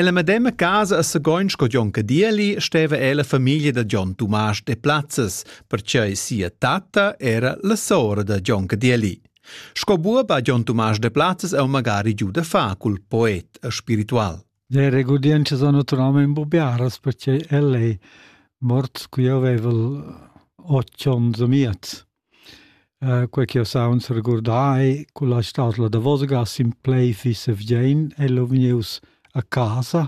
Nella medema casa a Sagoin sco Jon Cadieli steva el la famiglia da Jon Tumasch de Plazzes, perciei sia tatta era la sora da Jon Cadieli. Sco buob ha Jon Tumasch de Plazzes eu magari giu da fa cul poet e spiritual. Le regodienze sono naturalmente imbobiaras perché el è mort qui avevel 8 ons e miez. Quei ch'jeu saunz regurdar culla stadla davosgas in plai fissa vgien el ho vgnius a casa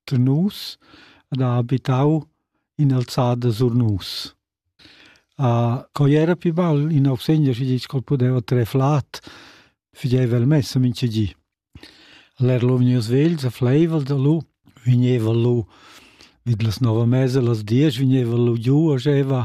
da nus ed ha abitau in'alzada sur nus. Quei era pi bel in augsegner schi ditg ch'el pudeva trer flat, figeva el messa mintga gi. El era lu vgnius vegls e fleivel da lu, vegneva lu vid las nova mesa las diesch vegneva lu giu e scheva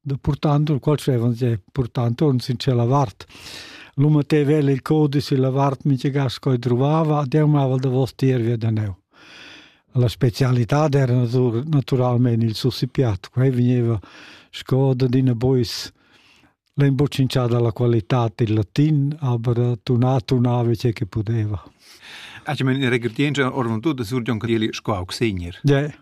de portanto il qual scevon je portanto un sin cella vart l'um te vel il code si la vart mi che gas coi trovava de amava da vos tier via da neu la specialità era naturalmente il sussipiat qua veniva sco da dina bois l'imboccincià dalla qualità del latin aber tunà tunava ciò che poteva Ach, ich meine, in Regardien orvon tu da Sur John Cadieli sco augsegner. Ja,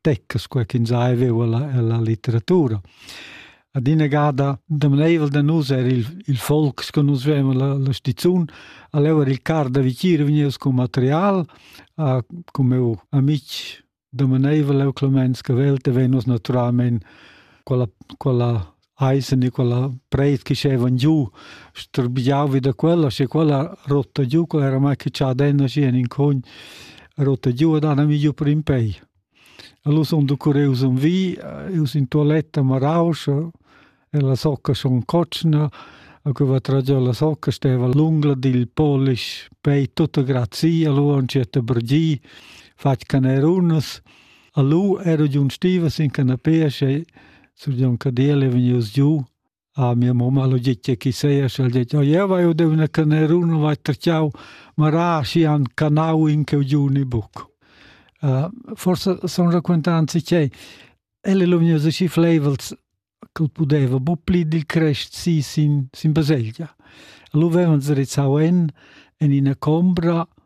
teccas quai ch'ins ha veu ella, ella litteratura. Ad ina gada demaneivel da nus er il, il folk che nus vem la, la stizun, allora il car da vicir vegnius con material, a, con meu amic demaneivel eu clemens che velte venus naturalmente quella, quella Eise Nicola Breit che schevan giu strbiau vi da quella, sche quella rotta giu, quella era mai che cha denna schi en in cogn rotta giu ed han mi giu per in pei. Allora son du curreus un vi, eus in toiletta marauscha, e la socca schon cotschna, a cui va tragiò la socca steva lunga dil polish pei tutta grazii, allora un certa brgii, fatg canerunas, allora ero giun stiva sin canapea, sche Sur Jon Cadel è vegnius giu a mia mamma lo gitge chi seia și al detg, ja vai o dev na canerun vai terciau, ma ra si han canau in cheu giu ni buc. Uh, forse son raquentanzi ch'ei, elle lo vegnius aschi flaivels ch'el pudeva bu pli dil crest si sin, sin baselgia. Lu vevan se rizzau en, en ina combra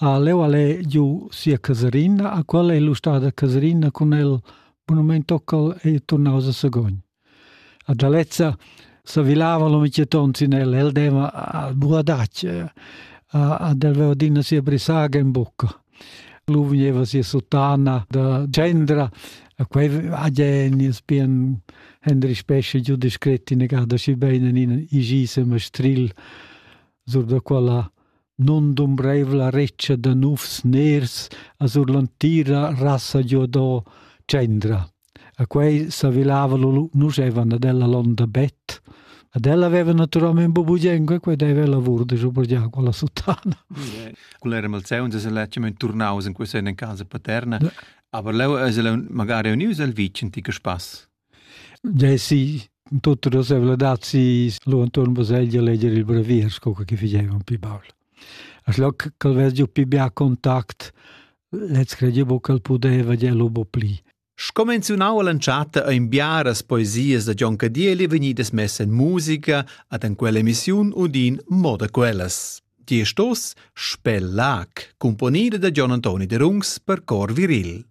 Leu al ei giu sia casarina, a quella ei lu stada casarina cun el bunamein tocca'l ei turnaus a Sagogn. A Gialezza s'avilava lu mintgaton sin el, el deva a buadatsch, ad el veva adina sia brisaga in bucca. Lu vegneva sia sottana da tschendra, a quei hagi ins bien Hendri Spescha giu descret innegada schi bein en in igis e mastril sur da quella nundumbreivla retscha da nufs ners a sur l'entira rassa giodò tschendra. A quei s'avilava lu nuschevan ad ella l'onda bet. Ad ella aveva naturalmente bubugliengo e quei deve lavur de giu per con la sottana. Con era malzeun se letgement turnaus in questa in casa paterna. Ja. Aber leu es el magari unius al vicin ti spass. Desi tutta la sevladad si lu entuorn baselgia leger il brevier sco che figeva un pi baul. As loc ch'el veggia pi bia a contact, lez credi buca ch'el pudeva dir lu bo pli. Scomenziunau all'entschatta ein biaras poesias da Gion Cadieli vegnidas messa en musica ad en quell'emissiun udin mo da quellas. Die Stoss Spellac, componida da Gion Antoni de Rungs per cor viril.